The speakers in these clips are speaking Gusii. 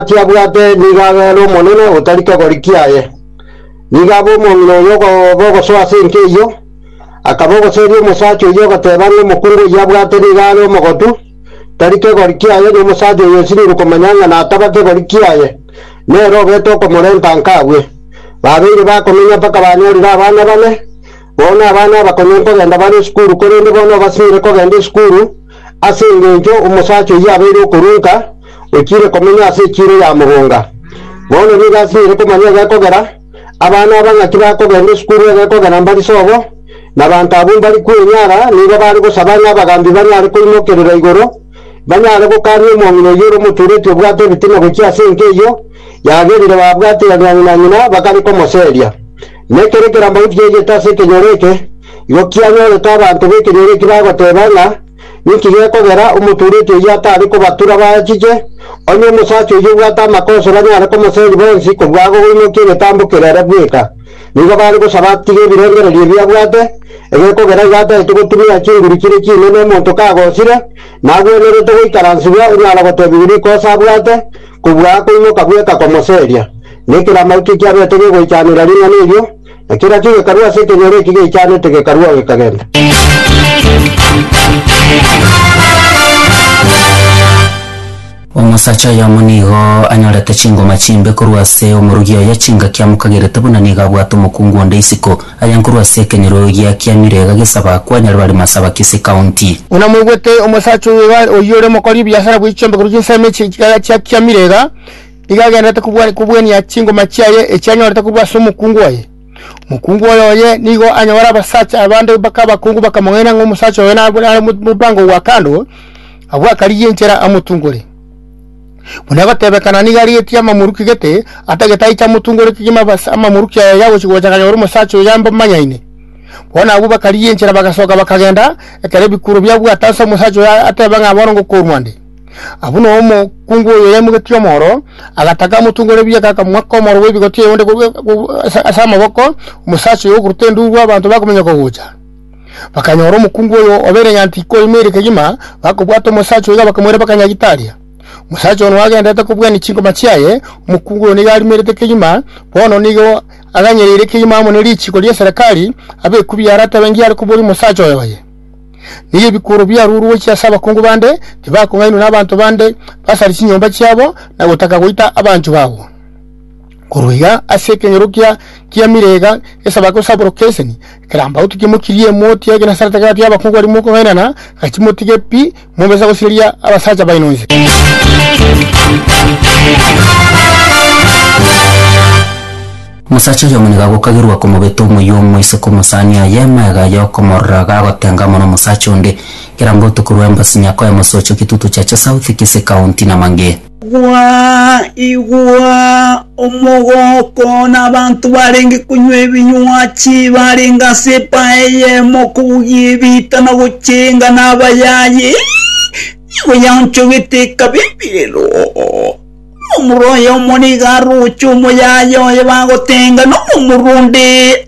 Gati abwate nigo abere omonene otari kegori kiaye. Nigo abe omong'ina oyo okoba ogosoa ase enka eyio, akaba ogoseria omosacha oyio ogoteba ng'a omokungu oyio abwate nigo are omogotu, tari kegori kiaye, na omosacha oyo osirirwe komanya ng'a nataba kegori kiaye, nere obete okomorenta nka abue. Babeire bakomenya mpaka banyorire abana bane, Bono abana abakong'u nkogenda bare esukuru, korende bono obasinyire kogenda esukuru, ase engencho omosacha oyio abeire okorunka, ochiire komenya ase echiiro ya mogonga. Bono nigo asinyire komanya egekogera, abana aba ng'aki bakogenda esukuru egekogera mbari sobo, na abanto abwo mbari kwenyara, nigo bare gosaba ng'a abagambi banyare koimokerera igoro, banyare gokania omong'ina oyio ore omotureti obwate ebitina gochia ase enka eyio yagerire babwate ya riang'ina-ng'ina, bakare komoseria. Na ekero ekerambe gotigeigete ase ekenyoro eke, igo kianyorete abanto b'ekenyoro eki bagoteeba ng'a, Ninki gekogera omotuureti oyio atari kobatura baachiche? Onye omosacha oyio obwate amakosa banyare komoseeri bonsi korwa aa gogoimokia egetambo kere ere bweka. Nigo bare gosaba atige ebirengererio ebi abwate, egekogera igo ataete gotumia chinguru chire chinene omonto kagosire, na agwenerete goikaransigwa onyara goteebigwa rikosa abwate, kobua aa koimoka bweka komoseeria. na ekero amauto ekiabete gegoichanera ring'ana erio, na kera chigekarwa ase ekenyoro eki geichanete gekarwao gekagenda. Omosacha oyomo nigo anyorete chingoma chimbe korwa ase omorugi oye, chingaki amokagerete buna nigo abwate omokungu onde isiko. Aya nkorwa ase ekenyoro giakiamire iga gesaba kwanyarwari Masaba Kisii County. Buna mwaigwete, omosacha oyo iga oyio ore omokori o biasara bwe chiombekero chinsemi echi iga chiakiamire iga, nigo agendererete kobua- kobuania chingoma chiaye echio anyorete korwa ase omokungu oye. Omokungu oyo oye nigo anyore abasacha abande mpaka abakungu bakamong'aina ng'a omosacha oyo nabwo nare mo- mopango gwa kando, agwo akarigie enchera amotungore. Buna egotebekana nigo arigetie amamoruki gete, atagete aiche amotungore kegima abas- amamoruki aya yagochia gocha akanyora omosacha oyo ambamanyaine. Bono abwo bakarigia enchera bagasoka bakagenda, ekero ebikuro biabwate ase omosacha oyo ateba ng'a bono ngokorwa ande. Abwo nao omokungu oyo yaimogetie omoro, agataka amotungore ebieka, akamoa komoro gw'ebigoto eyonde ase amaboko, omosacha oyo okoruta enduru abanto bakominyoka gocha. Bakanyora omokungu oyo obeire ng'a tikoimeire kegima, bakobwata omosacha oyo iga bakamoirabera Kanyagitaria. Omosacha ono agenderete kobwania chingoma chiaye, omokungu oyo nigo arimerete kegima, bono nigo aganyereire kegima amo ne richiiko ria Serekari, abe ekubi yare atebe ngiya are koboria omosacha oyo oye. Nigo ebikuuro biarurwe gochia ase abakungu bande, tibakong'ainwa n'abanto bande basare chinyomba chiabo na gotaka goita abanchwa babo. Korwa iga ase ekeng'ero kia kia Mirega gesaba gosaboro Keseni, ekerambaoto kimokirie emoti ya egenasara tagati y'abakungu baria mokong'ainana, gachia motige pi Mobisa gosiria abasacha baino inse. Omosacha oyomo nigo agokagerwa komobeta omoyio omo ase komosani aye, magega aye okomorora iga agotenga amo nomosacha onde. Kera mbotuko rwa embassy nyako emosooche gitutu chacha south, kisi county na mang'e. Igwa, igwa! Omogooko na abanto barenge konywa ebinywa chibarenge ase empaya eyemo kobugia ebiita na gochenga na abayayi, nigo yaonchogete ekaba emerero. Omorwaya omo nigo aroche omoyayi oye bagotenga, na omorwa onde.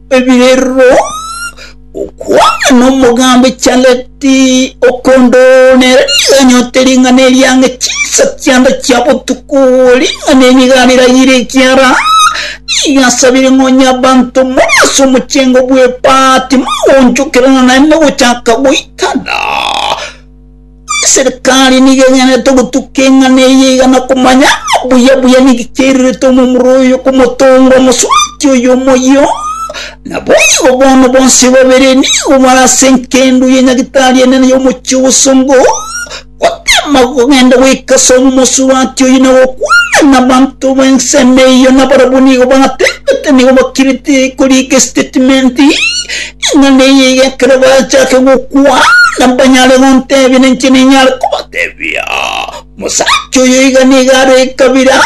Ebirero, Gokwana nomogambi Charlette Okondo nere nigo anyorete ring'ana eria ang'e chinsa chiande chia botuko, ring'ana eri nigo ariragire ekiara nigo asabire ng'a onye abanto more ase omochengo bw'epaati mogonchokerana naende gochaka goitana. Eserekari nigo enyanete ogotuka eng'ana eye iga na komanya buya buya niki kiairerete omomura oyo komotonga omosubati oyo omoyio. Naboigo bono bonsi babere nigo bare ase enkendo ya nyagitari enene y'omochie obosongo, gotema kogenda goika ase omosubati oyo na gokwana nabanto b'ensemo eyio, nabarabwo nigo batebete nigo bakirete korika estatement Ing'ana eye iga ekero bachake gokwana mbanyare gontebia, na inche ninyare kobatebia, Omosacha oyo iga nigo are ekabira.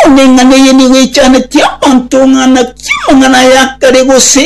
Bono ing'ana eye nigo echaneti abanto ng'a naki amang'ana aya akare gose